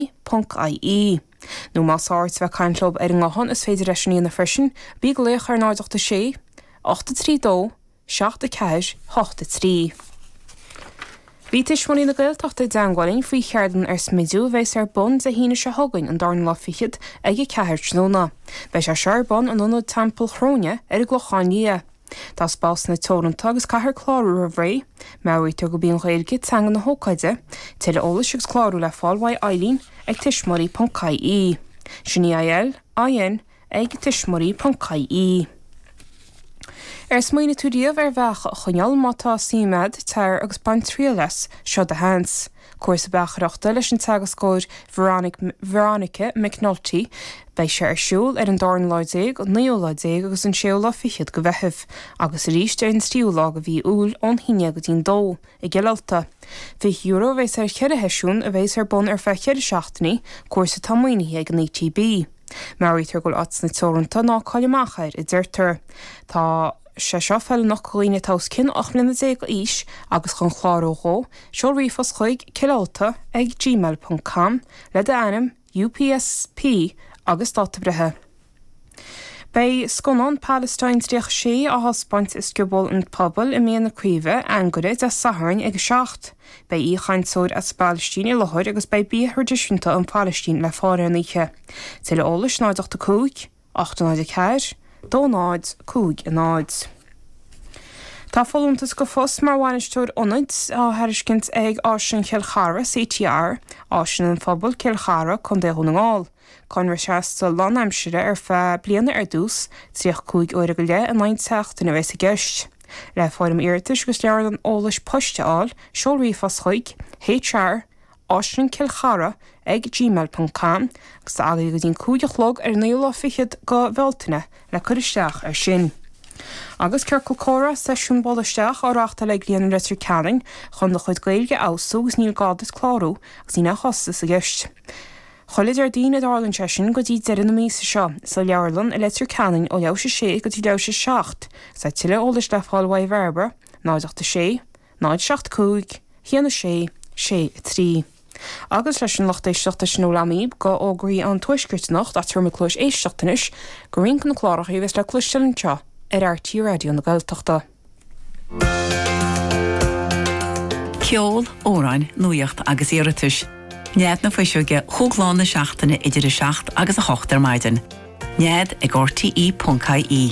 ii.ie. Nó más fearr leat a bheith caint leo ar an nguthán is féidir leat sin a dhéanamh freisin, bí ag glaoch ar 086 83 2 7 4 8 3. Bhí Tuismitheoirí na Gaeltachta i dteangmháil linn faoi cheardlann ar smidiú a bheas ar bun Dé hAoine seo chugainn an darna lá fichead ag a ceathair tráthnóna. Beidh sé seo ar bun in Ionad Teampall Chróine ar an gClochán Liath. Tá spásanna teoranta agus caithfear clárú roimh ré. Meabhraítear gurb í an Ghaeilge teanga na hócáide. Tuilleadh eolais agus clárú le fáil uaidh Eilín ag tuismitheoirí.ie. Sin EILIN ag tuismitheoirí.ie. Ar smaoinigh tú riamh ar bheacha a choinneáil? Má tá, suim agat, tar agus bain triail as. Seo do sheans! Cúrsa Beachaireachta leis an teagascóir Veronica McNulty. Beidh sé ar siúl ar an dara lá déag, naoú lá déag agus an séú lá fichead go Mheitheamh, agus arís ar an tríú lá go mhí Iúil ón haon déag go dtí'n dó, i gCill Ulta. €20 a bheas ar cheithre sheisiún, a bheas ar bun ar feadh ceithre seachtainí, cúrsa atá maoinithe ag an ETB. Meabhraítear go bhfuil áiteanna teoranta, ná caill amach air, a deirtear. Tá. sé seo feiliúnach do dhaoine atá os cionn 18 mbliana d'aois agus chun clárú dhó, seol ríomhphost chuig, cillulta ag gmail ponc com, le d'ainm, UPSP agus dáta breithe. Beidh scannán Palestine 36 á thaispeáint i Scioból an Phobail i Mín na Craoibhe, Anagaire, Dé Sathairn ag 7. Beidh aoichainteoir as an bPalaistín i láthair agus beidh bia traidisiúnta ón bPalaistín le fáil ar an oíche. Tuilleadh eolais 085. 804, 2050 Tá folúntas go phost mar Bhainisteoir Ionaid á thairiscint ag Áislann Chill Chartha CTR, Áislann an Phobail, Cill Chartha, Co. Dhún na nGall. Conradh seasta lánaimsire ar feadh bliana ar dtús, 35 uair go leith in aghaidh an tseachtain a bheas i gceist. Le foirm iarratais agus leabhrán eolais poist a fháil, seol ríomhphost chuig, HR, aislannchillchartha ag gmail ponc com agus tá agaibh go dtí an cúig a chlog ar an naoú lá fichead go Bhealtaine le cur isteach ar sin. Agus Ciorcal Comhrá, Seisiún Buail Isteach, á reáchtáil ag Líonra Leitir Ceanainn chun do chuid Gaeilge a fheabhsú agus níl gá duit clárú agus níl aon chostas i gceist. Chuile Déardaoin a dtarlaíonn sé sin go dtí deireadh na míosa seo, sa Leabharlann i Leitir Ceanainn ó leathuair tar éis a sé go dtí leathuair tar éis a seacht. Tá tuilleadh eolais le fáil uaidh Bhairbre, 0 8 6, 075 1 6 6 3 Agus leis sin, lucht éisteachta sin a bhfuil agam daoibh go fhógraí an Tuaiscirt anocht, ach tabharfaidh muid cluais éisteachta anois go roinnt go na cláracha a bheas le cloisteáil anseo ar RTÉ Raidió na Gaeltachta. Ceol, amhráin, nuaíocht agus iarratais. Nead na Fuiseoige cúig lá na seachtaine idir 7 agus 8 ar maidin. Nead ag rte.ie.